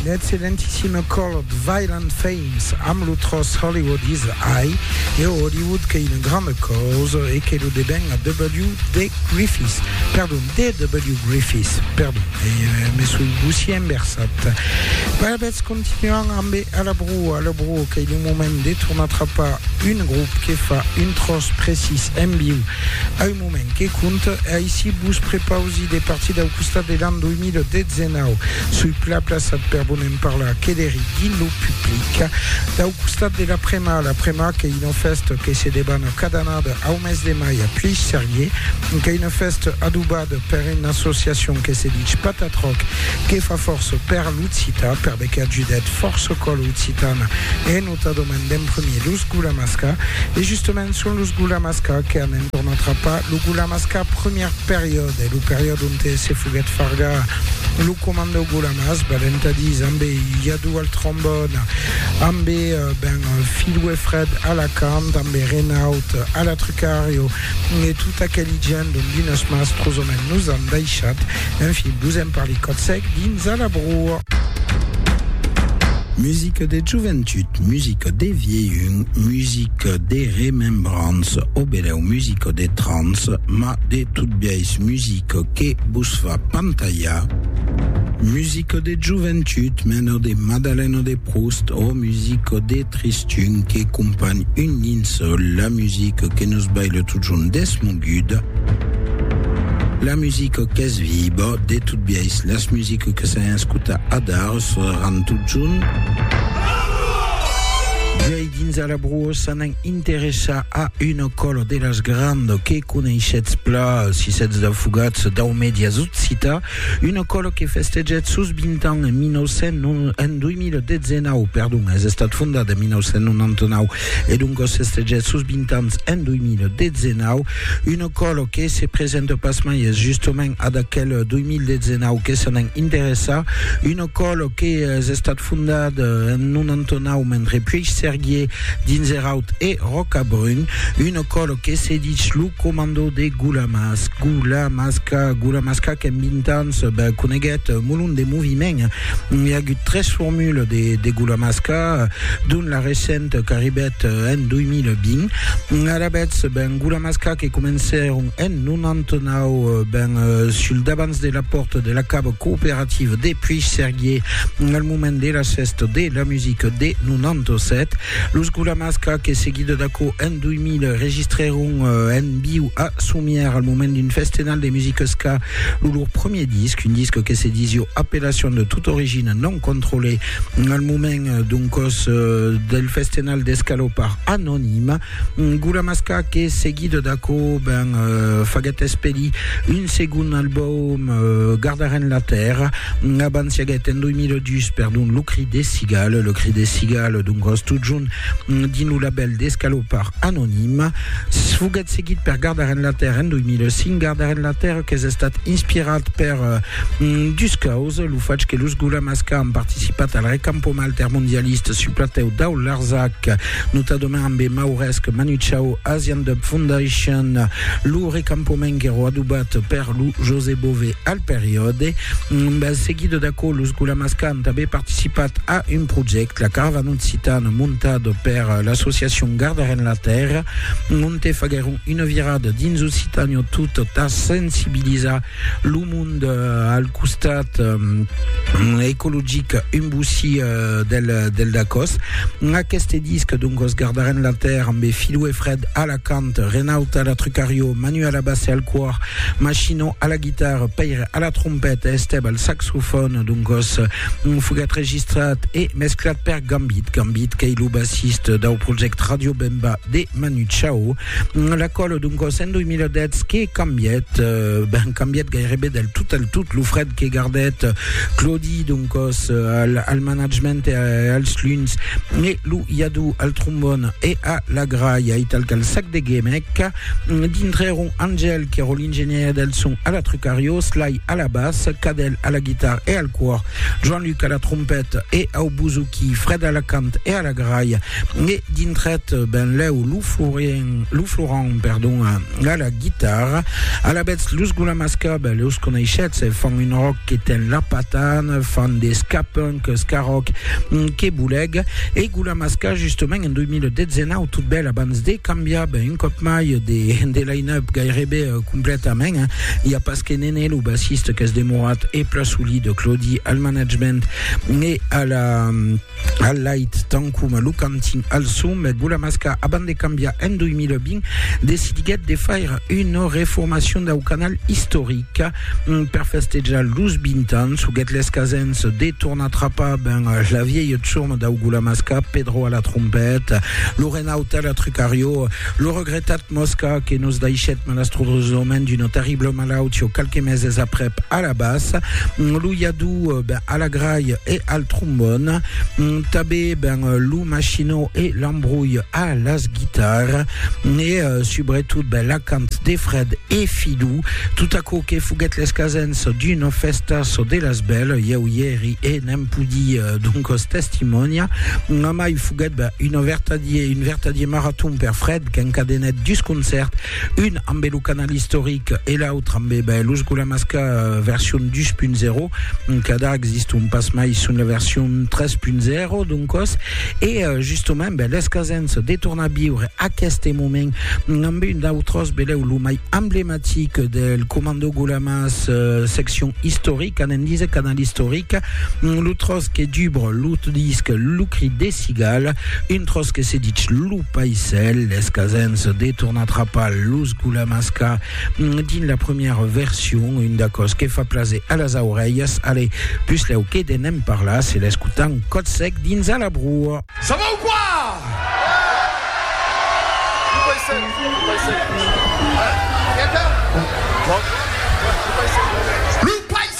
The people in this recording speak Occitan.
L'excellentissime Colored Violent Femmes amb lo tròç Hollywood is High e o Hollywood qu'ei una granda causa e que lo deben a W.D. Griffiths, perdon, D.W. Griffiths, perdon, me soi bossier enversat. Alavetz continuam ambe A la Brua, A la Brua qu'ei lo moment de tornar trapar un grop que fa un tròç precís en viu, moment que compte, aicí vos prepausi de partir dau costat de l'an 2019. Soi plan plaçat per vos ne'n parlar que d'eri dins lo public. Dau costat de la Prema, la Prema qu'ei una fèsta que se debana cada annada au mes de mai a Plhissarier, qu'ei una fèsta adobada per una associacion que se dich Patatroc, que fa fòrça per l'occitan, perbe qu'a judat fòrça còla occitana en. Tota domen d'en premier los Gulamasca e justament son los Gulamasca que an en torn atrapat lo Gulamasca premier periòde, lo periòde onte se foguèt fargar lo comandau Gulamas, balentadís ambe Yadou al trombòn, ambe ben Filou e Fred a la cant, ambe Renaut a la trucario e tot aqueli gent dont d'unes mas trosament nos an daishat, enfin, vos en parli còth sec dins a la broa. Musica de joventut, musica de vielhun, musica de remembrança, o belèu musica de trans, ma de tot biais musica que vos fa pantalhar. Musica de joventut, mena de Madalena de Proust, o musica de tristura, Tun que companh un dins la musica que nos baila totjorn desmoguda, la musica qu'es viba, de tot biais las musica que s'an escuta adar seràn totjorn. Vuei dins a la broa s'an an interessa a una cola de las granda que coneishetz pla, si setz daufugats dau medias occita, Una còla que festejèt sos 20 ans en 2019, perdon, es estat fondat en 1999 e doncas festejèt sos 20 ans en 2019, una còla que se presenta pasmai es justament ad aquel 2019 que se n'en interessa, una còla que es estat fondat en 99 mentre Puigsèrguier Dins er aut hè Ròcabrun, un ocòlo que se ditz lo comandò de Gulamas, Gulamasca, Gulamasca qu'en vint ans coneguèt molon de moviment. I a agut tres formules de de Gulamasca, dont la recenta qu'arribèt en 2020. Alavetz, ben Gulamasca que comencèron en 99, ben sul davants de la pòrta de la cava cooperativa de Puigcerguier, moment de las fèstas de la musica de 97. Los Gulamasca, que seguida d'aquò en 2000 registrèron euh, en viu a Somièr al moment d'un festenal de musica ska lo lor premier disc, un disc que se disio Appellation de toute origine non contrôlée al moment euh, d'un cos euh, del festenal d'escalopar anonima. Gula Masca que seguida d'aquò ben faguèt espedir un segon albòm Gardarem la Tèrra abans siaguèt en 2002 perdon Lo Cri des Cigales, Le Cri des Cigales doncas totjorn dins lo labèl d'Escalopard Anonim foguèt seguit per Gardarem la Tèrra en 2005, Gardarem la Tèrra qu'es estat inspirat per dus causas, lo fach que los Gula Masca an participat al recampament altermondialista sul platèu dau Larzac No tà doman ambe Mauresc Manuchau Asian Dub Foundation lo recampoment qu'èro adubat per lo José Bové al periòde. Seguit d'aquò, los Gulamas qu'an tanben participat a un projèct, la Caravana Occitana, montat per l'associacion Gardarem la Tèrra, onte faguèron una virada dins Occitània tot tà sensibilizar Lo mond al costat ecologic un bocí del, del Dacòs. Aqueste disc, donc, os gardarem la terre amb Filou e Fred a la cant, Renaud a la trucario, Manu a la basse e al còr, Machino a la guitarra, Pèire a la trompeta e Estèb al saxofòn, donc, os foguèt registrat e mesclat per Gambit, Gambit qu'ei lo bassist dau project Radio Bemba de Manu Chao. La còlo d'un còs en 2010 que cambièt, ben cambièt gairebe del tot al tot lo fred que gardèt Claudi d'un còs al, al management e als luns, e lo Iadou al trombon e a la gralha e tal qu'al sac de gemec. Dintre èron Angèle qu'èro l'ingenièr del son a la Trucario, Sly a la bas, Cadel a la guitarra e al còr, Joan-Luc a la trompèt e au bouzouki, Fred a la cant e a la gralha, Me dintret benlèu lo Florent, lo Florent, perdon, a la guitarra. Alavetz, los Gulamas Cub, los coneishetz, fan un rock que ten la patan, fan de ska-punk, ska-rock, que boleg. E Gulamas Cub, justament, en 2019, tot bèl abans de cambiar, ben, un còp mai, de, de line-up gairebe completament, i a pas que Nene, lo bassiste, qu'es demorat e pla solid, Claudi al management e a la al lait tant coma lo cantin al som, Gulamasca, abans de cambiar en 2020, decidiguèt de faire una reformacion dau canal istoric mm, per festejar los 20 ans, huguèt l'escasens de tornar trapar ben la vièlha tsurma dau Gulamasca, Pedro a la trompeta, lo Renaud a la trucarió, lo regretat Mosca que nos daishèt malastrosament d'una terribla malautió qualques meses aprèp a la bas, lo iadú ben a la grai e al trombòn, tabé ben lo machinó e l'embrolh a las guitar, e subretot ben l'acant de Fred e Fidú, tot aquò que foguèt l'escasens d'una fèsta çò de las bèl, ieu i èri e n'èm pudi doncos testimònia, mai foguèt ben un vertadier maraton per Fred, qu'encadenèt dus concèrts, un ambe lo canal istoric e l'autre ambe ben, los Gulamasca version 2.0, encara existon pas mai son la version 3.0 d'un còs, e justament ben, l'escasens de tornar viure aqueste moment ambe un d'autròs belèu, lo mai emblematic del Commando Gulamas seccion istoric, anem díser canal istoric, lo tròç que dubre lo disc Lo cri des cigales, un tròç que se ditz Lo. Paisèl, es casens de tornar trapar los gulamasca dins la premièra version, un d'acòs que fa plaser a las aurelhas, ale, puslèu que de n'en parlar, se l'escotam còth sec dins a la broa. Ça va ou quoi? Paisèl!